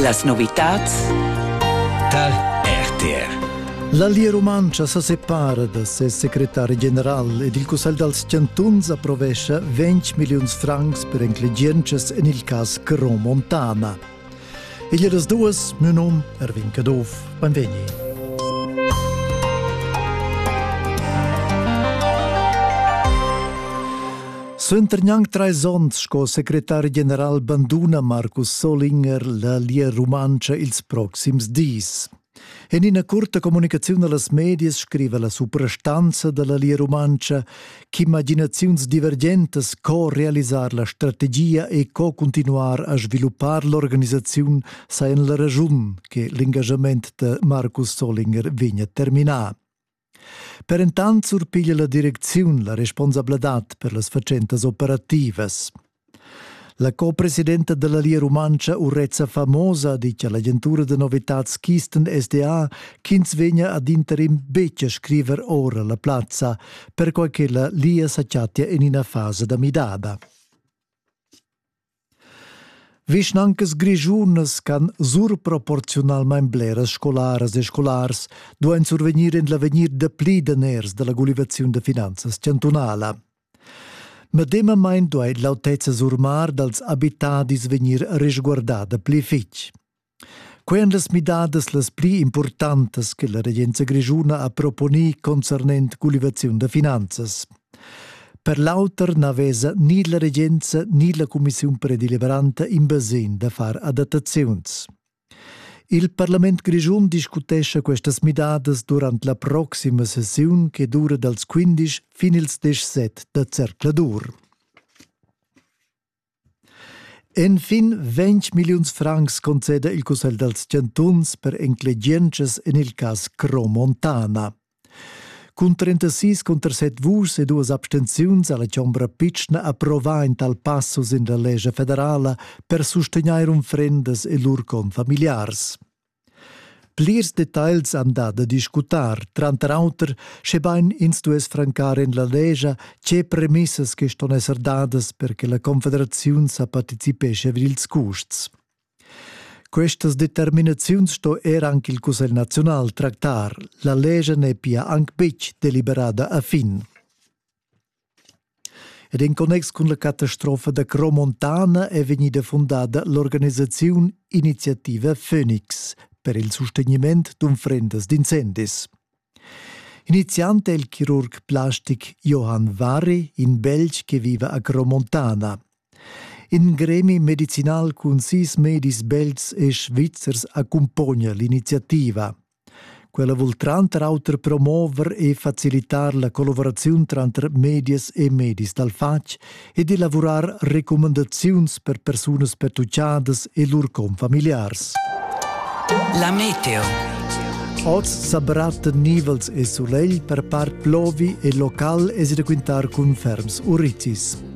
Las novitads tar RTR. La Lia Rumantscha sa separa da ses secretari general ed il Cussegl dals chantuns approvescha 20 milliuns francs per enclegientschas en il cas Cron Montana. Igl è das duas, mio num Erwin Caduff. Benvegni. Suenter gnanc trais onns sco secretar general banduna Markus Solinger la Lia Rumantscha ils proxims dis. En ina curta communicaziun a las medias scriva la suprastanza da la Lia Rumantscha ch'imaginaziuns divergentas co realisar la strategia e co continuar a sviluppar l'organisaziun sajan la raschun che l'engagament da Markus Solinger vegnia terminà. Per entant surpiglia la direcziun la responsabladad per las fatschentas operativas. La co-presidenta della Lia Rumantscha Urezza Famosa di che l'agentura da novitads Kisten SDA ch'ins vegna ad interim betg a scriver ora la plazza, perquai che la Lia sa chattia en ina fasa da midada. Vischnancas grischunas ch'han surproporziunalmain bleras scolaras e scolars duain survegnir en l'avegnir dapli daners da la gulivaziun da finanzas chantunala. Medemamain duai l'autezza surmar dals abitadis vegnir resguardada pli fitg. Quei ein las midadas las pli impurtantas che la regenza grischuna ha proponì concernent gulivaziun da finanzas. Per l'auter na vesa ni la regenza ni la cumissiun predeliberanta in basegn da far adattaziuns. Il parlament grischun discutescha questas midadas durant la proxima sessiun che dura dals 15 fin ils 17 da zercladur. Enfin ventg milliuns francs conceda il Cussegl dals chantuns per enclegientschas en il cas Cromontana. Cun 36 conter 7 vuschs e duas abstenziuns ha la Chombra pitschna approvà in tal passo sin la lescha federala per sustegnair unfrendas e lur confamiliars. Plirs detagls han dà da discutar, tranter auter, schebain ins stuess francar en la lescha tge premissas che ston esser dadas per che la Confederaziun sa participescha vid ils custs. Questas determinaziuns sto er anche il Cussegl naziunal tractar. La lescha n'è pia anc betg deliberada a fin. Ed in connex cun la catastrofa da Cromontana è vegnida fundada l'organisaziun Iniziativa Phoenix per il sustegniment d'unfrendas d'incendis. Iniziant è il chirurg plastic Johann Warri, in Belg che viva a Cromontana. In gremi medicinal cun sis medis belts e svizzers accumpogna l'iniziativa. Quella vul tranter auter promover e facilitar la collaboraziun tranter medias e medis dal fatg ed elavurar recumandaziuns per persunas pertuccadas e lur confamiliars. La meteo. Oz sa brat nivels e sulegl per part plovi e local es da quintar cun ferms uricis.